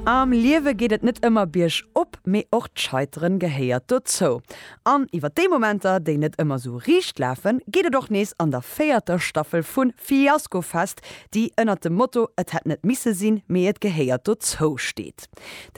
Am Liewe geet et net ëmmer Bierg op, mee och d'Scheiteren gehéiert dozou. An iwwer déi Momenter, déi net ëmmer sou riicht lafen, geet et och nees an der véierter Staffel vu Fiaskofest, déi ënnert dem Motto Et hätt net misse sinn, mee et gehéiert dozou steet.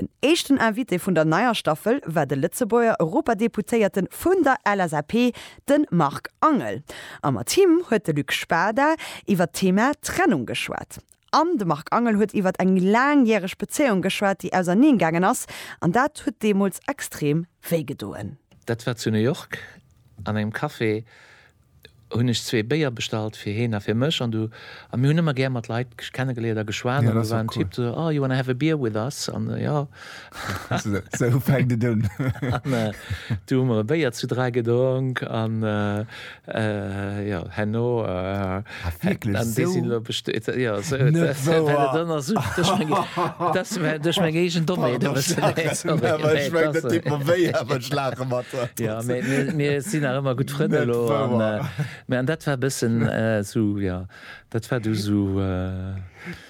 Den éischten Invité vun der neier Staffel war de Lëtzebuerger Europadeputéierte vun der LSAP, de Marc Angel. A mat him huet de Luc Spada iwwer d'Thema Trennung geschwat. An de Marc Angel huet iwwert eng laangjäreg Bezéiung geschwat, déi auserneen gaangen ass. An dat huet deemools extrem wéi gedoen. Dat war zu New York an engem Café. Hunn ech zwee Béier bestallt, fir hien a fir mech. An du, a mir hunn ëmmer gär mat Leit kennegeléiert a geschwat. An do war en Typ, do, Oh, you wanna have a beer with us? An jo. Sou fänkt et un. Du hu mer e Béier zu dräi gedronk an jo herno duerch meng eegen Dommheet e bëssen. Mir sinn nach ëmmer gutt Frënn elo an dat war e bëssen esou, jo dat war du esou.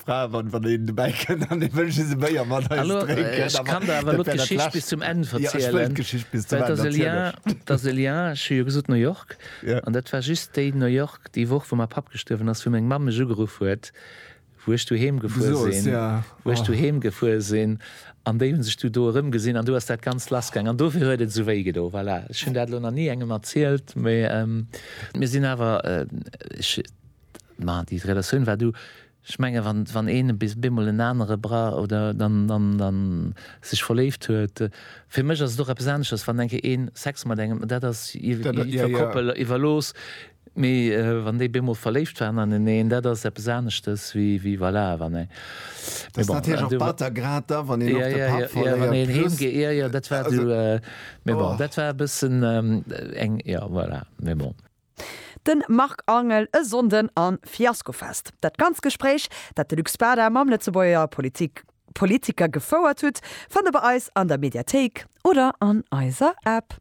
Fraen wann wann een dobäi kënnt an ee wëllt just e Béier mat eis drénken, awer dat wär dat lescht. Ech kann der awer elo d'Geschicht bis zum Enn verzielen. Ja, ech wëll d'Geschicht bis zum Enn erzielen. Dat ass e Lien, ech hu jo gesot New York, an dat war just déi New York, déi Woch wou mäi Papp gestuerwen ass, wou meng Mamm mech ugeruff huet, wou ech du heem gefuer sinn, wou ech du heem gefuer sinn, an déi hu sech du do erëm gesinn, an du ass dat Ganzt lass gaang, an dofir huet et esou wéi gedo. Voilà, ech hunn dat elo nach ni engem erzielt, mä mir sinn awer, ech Mä déi Relatioun war do. Ech menge wann een bis bemol en anere bra oder dann dann sech verléift huet. Fir mech ass et och eppes anesches, wann enke een Sex mat engem, dat ass iwwer Koppel, iwwer looss. Mee wann déi bemol verléift waren aneneen, dat ass eppes aneschtes wéi voilà wann eng. Dat ass natierlech och batter, grad da wann een och de Papp verléiert. Wann een heem geet, jo jo dat war do. Mee bon dat war e bëssen eng, jo voilà. Mee bon. Den Marc Angel e Sonnden an Fiaskofest. Dat ganzt Gespréich dat de Luc Spada mam Lëtzebuerger Politik Politiker gefouert hutt fannt der bei eis an der Mediathéik oder an eiser App.